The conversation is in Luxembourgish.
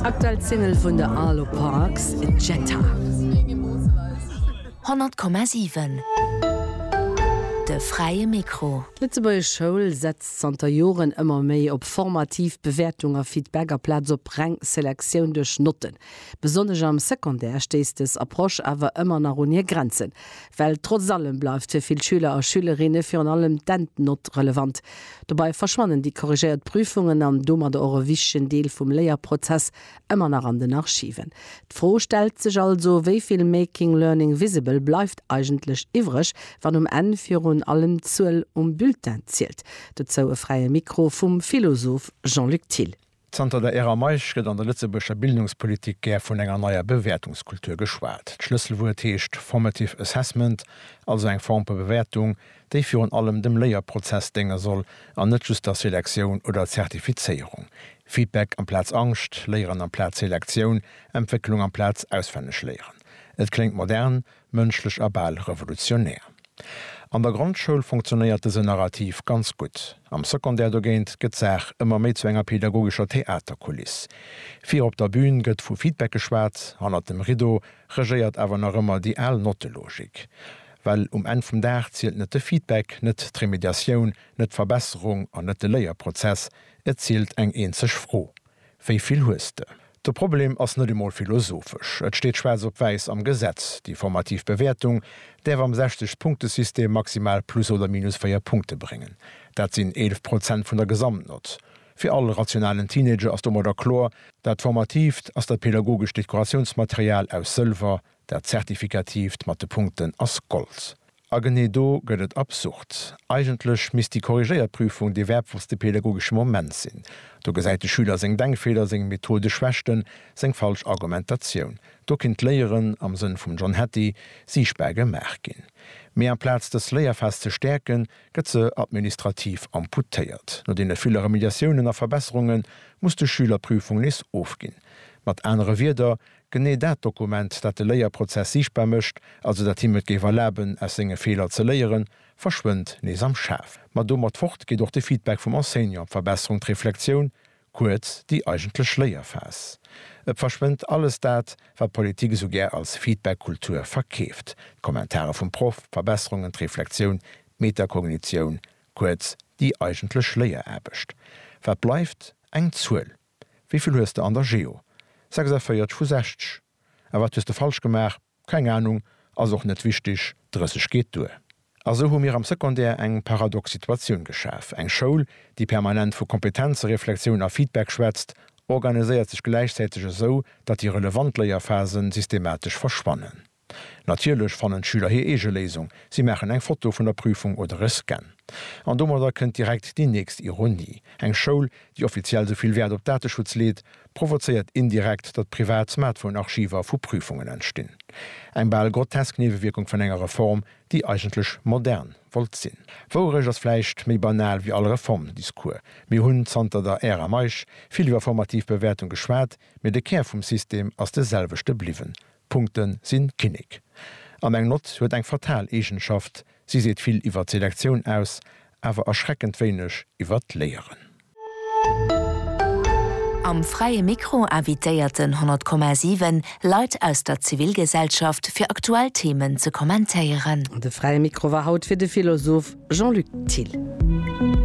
Aktuell d'Single vun de Arlo Parks, Jetta. 100,7 De fräie Mikro. D'Lëtzebuergesch Schoul setzt zanter Joren ëmmer méi op formativ Bewäertung a Feedback aplaz op reng Selektioun duerch Notten. Besonnesch am Secondaire stéisst des Approche awer ëmmer nach un hir Grenzen, well trotz allem bleift fir vill Schüler a Schülerinne virun allem d'Endnott relevant. Dobei verschwannen déi korrigéiert Prüfungen an domadder och e wichtegen Deel vum Léierprozess emmer nach an den Archiven. D'Fro stellt sech also, wéi vill Making Learning Visible bleift eigentlech iwwreg, wann um Enn virun allem d'Zuel um Bulletin zielt? Dozou e fräie Mikro vum Philosoph Jean-Luc Thill. Zanter der Ära Meisch gëtt an der Lëtzebuerger Bildungspolitik gär vun enger neier Bewäertungskultur geschwat. D'Schlësselwuert heescht formative assessment, also eng Form vu Bewäertung, déi virun allem dem Léierprozess dénge soll an net just der Selektioun oder Zertifizéierung. Feedback amplaz Angscht, Léieren amplaz Selektioun, Entwécklung amplaz Auswennegléieren. Et kléngt modern, Mënschlech a bal revolutionär. An der Grondschoul funktionéiert dësen Narrativ ganz gutt. Am Secondaire dogéint gëtt d'Saach ëmmer méi zu enger pedagogescher Theaterkuliss. Vir op der Bün gëtt vu Feedback geschwat, hannert dem Rideau regéiert awer nach ëmmer déi al Nottelogik. Well um Enn vum Dag zielt net de Feedback, net d'Remediatioun, net d'Verbesserung an net de Léierprozess, et zielt eng eenzeg Fro, Wéi vill hues de? De Problem ass net emol philosophesch. Et steet schwaarz op wäiss am Gesetz, Déi formativ Bewäertung däerf am 60 Punktesystem maximal plus oder minus 4 Punkte bréngen. Dat sinn 11 Prozent vun der Gesamtnott. Fir all rationalen Teenager ass domadder kloer, Dat formatiivt ass dat pädagogescht Dekoratiounsmaterial aus Sëlwer, dat zertifikatiivt mat de Punkten ass Gold. A genee do gëtt et absurd. Eigentlech misst déi korrigéiert Prüfung dee wäertvollste pedagogesche Moment sinn. Do gesäit de Schüler seng Denkfeeler, seng methodesch Schwächten, seng falsch Argumentatioun. Do kinnt d'Léieren, am Sënn vum John Hattie, siichtbar gemaach ginn. Mee amplaz dës Léierphas ze stäerken, gëtt se administrativ amputéiert. No deene ville Remediatiounen a Verbesserunge muss de Schüler d'Prüfung nees ofginn. Mat anere Wierder, Genee dat Dokument, dat de Léierprozess siichtbar mécht, also dat him et géif erlaben, aus senge Feeler ze léieren, verschwënnt nees am Schaf. Ma domat fort geet och de Feedback vum Enseignant, d'Verbesserung, d'Reflexioun, kuerz, déi eigentlech Léierphas. Et verschwënnt alles dat, wat d'Politik esou gär als Feedback-Kultur verkeeft, d'Kommentare vum Proff, d'Verbesserungen, d'Reflexioun, d'Metakognitioun, kuerz, déi eigentlech Léieraarbecht. Wat bleift? Eng Zuel. Wéi vill hues de an der Geo? 46 vu 60. A wat hues de falsch gemaach? Keng Ahnung, ass och net wichtig, 30 geet duer. A sou hu mir am Secondaire eng paradox Situatioun geschaf, eng Schoul, déi permanent vu Kompetenzereflexioun a Feedback schwätzt, organiséiert sech gläichzäiteg esou, datt déi relevant Léierphasen systematesch verschwannen. Natierlech fannen d'Schüler hir eege Léisung, si maachen eng Foto vun der Prüfung oder e Scan. An domadder kënnt direkt déi nächst Ironie, Eng Schoul, déi offiziell sou vill Wäert op Dateschutz leet, provozéiert indirekt, datt privat Smartphone-Archiver vu Prüfungen entstinn. Eng bal grotesk Niewewierkung vun enger Reform, déi eigentlech modern wollt sinn. Wouerecht ass vläicht méi banal wéi all Reformdiscours. Mir hunn zanter der Ära Meisch vill iwwer formativ Bewäertung geschwat, mee de Kär vum System ass de selwechte bliwwen, Punkte sinn Kinnek. An eng Nott huet eng fatal Eegenschaft, Si seet vill iwwer d'Selektioun aus, awer erschreckend wéineg iwwer d'Léieren. Am Fräie Mikro invitéiert den 100,7 Leit aus der Zivilgesellschaft, fir aktuell Themen ze kommentéieren. De Fräie Mikro war haut fir de Philosoph Jean-Luc Thill.